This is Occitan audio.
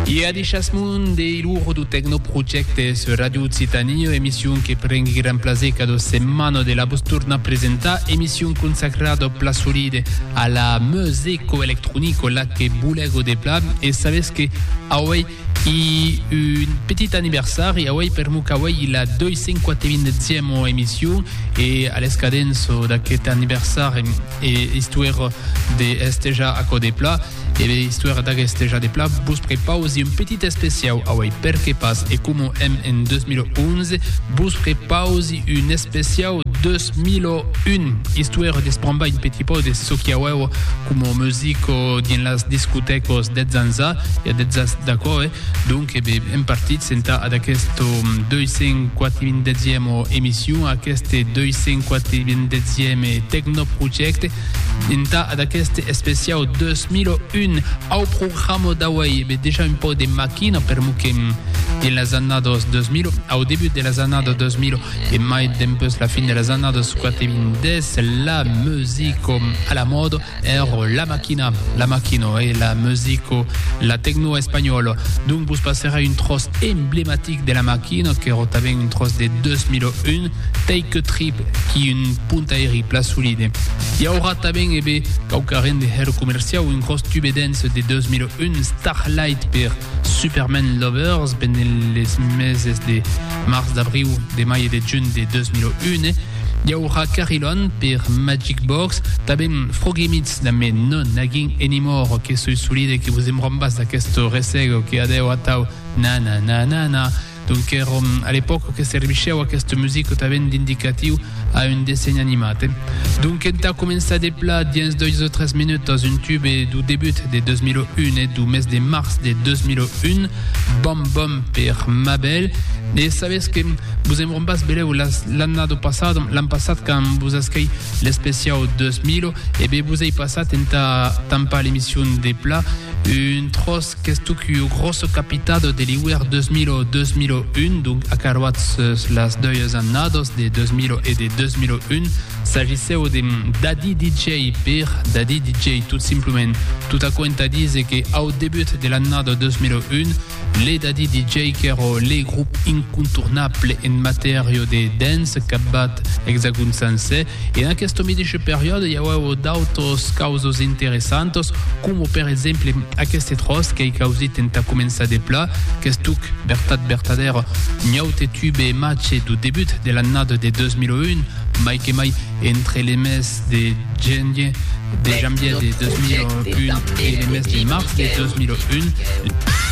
E a deishasmon de ilor do Tecnoprojecte sur Radio Occitanie, emission que prengui gran plaser cada setmana de la vos tornar presentar, emission consacrada au pla solide a la musico electronico la que bolego de pla e sabes que auei I un petit anniversari auei per mo qu'auei la 250 e emission e a l'escadents d'aquest anniversari e istuèra de estejar aquò de pla e be istuèra d'agestejar de pla vos prepausi un petit especiau auei perque pas e coma èm en 2011 vos prepausi un especiau 2001 istuèra d'esprembar un petit pauc de çò qui auèu coma musica dins las discotècas deths ans a Ja detzas d'aquò, eh? Donc, e be, èm partits entà ad aquesto 240ème emission, a aqueste 240ème tecnoprojècte, entà ad aqueste especiau 2001. Au programa d'auei, e be, dejà un pauc de maquina, per mo que dins las annadas 2000, au debut de las annadas 2000, e mai dempeus la fin de las annadas 40, la musica a la mòda, Ero la maquina, la maquino e la musico, la tecno espanhòla. Donc vos passèra un tròç emblematic de la maquina, qu'èro tanben un tròç de 2001, Take a Trip, qui un puntairi pla solide. I aurà tanben, e be, quauqua rend de hèr comerciau, un gròs tube dance de 2001, Starlight, per Superman Lovers, pendent les meses de març, d'abriu, de mai e de junh de 2001, I aurà Carillon per Magic Box, tanben Froglimits damb Me No Nagging Anymore que soi solide que vos embrombass d'aquest ressego que adèu atau na-na-na-na-na. Donc er òm a l'epòca que servichèu aquesta musica tanben d'indicatiu a un dessenh animat. Donc entà començar de pla, dins dois o tres minutas, un tube du debut de 2001 e du mes de març de 2001, Bom Bom per Mabel. E sabètz que vos Quan bas beleu l'annado passado, l'an passat quand vos asquei l'especiau 2000, e be vos ei passat entà tampar l'emission de pla un tros qu'estuc ua grossa capitado de l'iuèr 2000-2001, donc acaroats sus las doias annados de 2000 e de 2001. S'agisseu de Daddy DJ per Daddy DJ tot simplement, tot aquò entà díser que au debut de l'annada 2001, Le Daddy DJ qu'èro le grop incontournable en matèria de dance qu'a bat Exagon Sancè. En aquesta medeisha periòda i auèvo d'autos causos interessantos, coma per exemple aqueste tròç qu'ei causit entà començar de pla, qu'estuc vertat vertadèra Nyaute Tube Mache do debut de l'annada de 2001, mai que mai entre le mes de genier de janvier de 2001 e le mes de març de 2001.